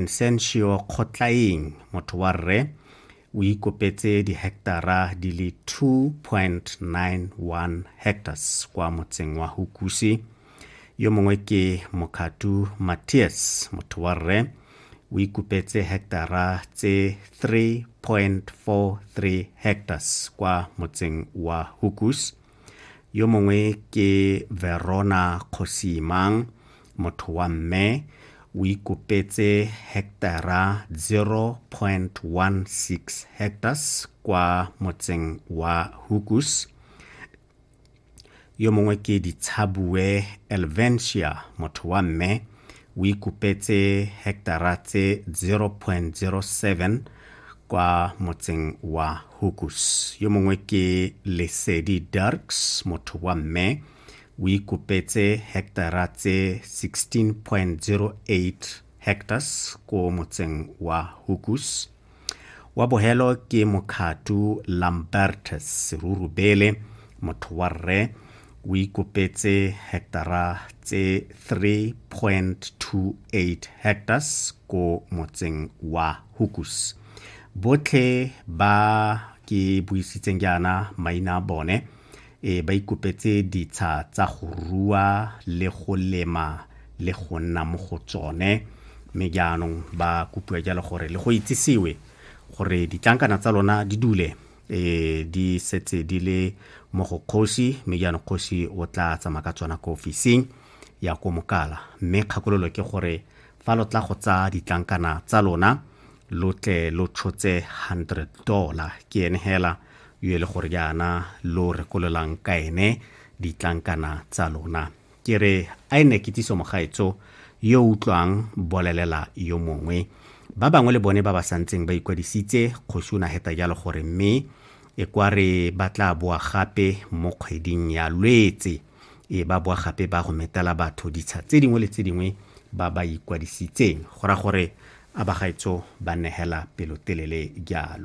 Nsentio Kgotlaeng motho wa rre o ikopetse diheketara di le 2.91 hectares kwa motseng wa Hukusi. Yo mongwe ke Mokatu Matthias motho wa rre o ikopetse heketara tse 3.43 hectares kwa motseng wa Hukus. Yo mongwe ke Verona Kgosimang motho wa mme o ikopetse hektara 0.16 hectares kwa motseng wa Hukus yo mongwe ke ditshabue elventia motho wa mme o ikopetse hektara tse 0.07 kwa motseng wa hukus yo mongwe ke lesedi darks motho wa mme o ikopetse heketara tse 16.08 hectares ko motseng wa Hukus. Wa bohelo ke Mokhatu Lambertus Serurubele, motho wa rre, o ikopetse heketara tse 3.28 hectares ko motseng wa Hukus. Botlhe ba ke buisitseng jaana maina a bone Ee, ba ikopetse ditsha tsa go rua le go lema le go nna mo go tsone. Mme jaanong ba kopiwa jalo gore le go itsisiwe gore ditlankana tsa lona di dule e di setse di le mo go kgosi mme jaanong kgosi o tla tsamaya ka tsona ko ofising ya ko mokala mme kgakololo ke gore fa lo tla go tsaya ditlankana tsa lona lo tle lo tshotse 100 dollar ke ene hela yo e le gore jaana lo rekololang ka ene ditlankana tsa lona ke re a e ne kitsiso mogaetso yo utlwang bolelela yo mongwe ba bangwe le bone ba ba santseng ba ikwadisitse kgosi o na heta jalo gore mme e kwa re ba tla boa gape mo kgweding ya lwetse e ba boa gape ba go metela batho ditsha tse dingwe le tse dingwe ba ba ikwadisitseng go ra gore a bagaetso ba negela pelotelele jalo